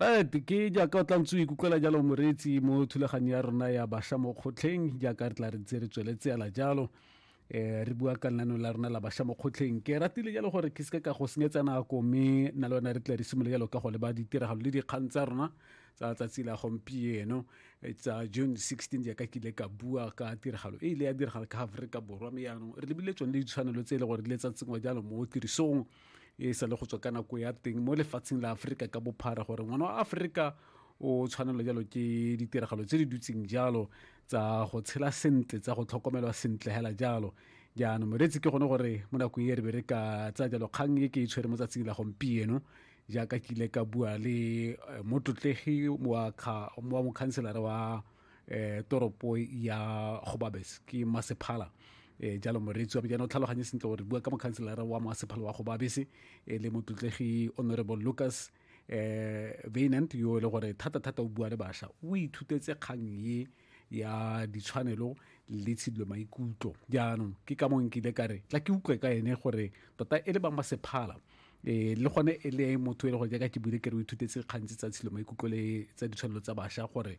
right ke jaaka o tlantse o ikutlwela jalo moreetsi mo thulaganyo ya rona ya basha mo kgotlheng jaaka re tla re tse re tsweletse ala jalo eh re bua ka lenaneo la rona la basha mo kgotlheng ke ratile jalo gore ke seke ka go senyetsa nako mme na le yone re tla re simole jalo ka go leba ditiragalo le dikgang tsa rona tsa tsatsi la gompieno eh, tsa june 16 jaaka ke ile ka bua ka tiragalo e ile ya diragala ka aforika borwa mme yaanong re lebile tsone le ditshwanelo tse e le gore di le tsa tsengwa jalo mo tirisong e sa le go tswa ka nako ya teng mo lefatsheng la aforika ka bophara gore ngwana wa aforika o tshwanelo jalo ke ditiragalo tse di dutseng jalo tsa go tshela sentle tsa go tlhokomelwa sentle hela jalo jaanong moreetsi ke gone gore mo nako e re be re ka tsa jalo kgang e ke e tshwere mo tsatsing la gompieno jaaka ke ile ka bua le eh, motlotlegi wa mokhanselara wa eh, toropo ya gobabes ke masephala eh, jalo moreetsi wa bjana o tlhaloganye sentle gore bua ka mokhanselara wa masephala wa gobabese e le motlotlegi honorable lucas eh Venant yo e le gore thata thata o bua le basha o ithutetse kgang ye ya ditshwanelo le tshidilo maikutlo jaanong ke ka mong nkile ka re tla ke utlwe ka ene gore tota e le ba masephala eh le gone e le motho e le gore jaaka ke buile ke re o ithutetse kgantsi tsa tshilo maikutlo le tsa ditshwanelo tsa basha gore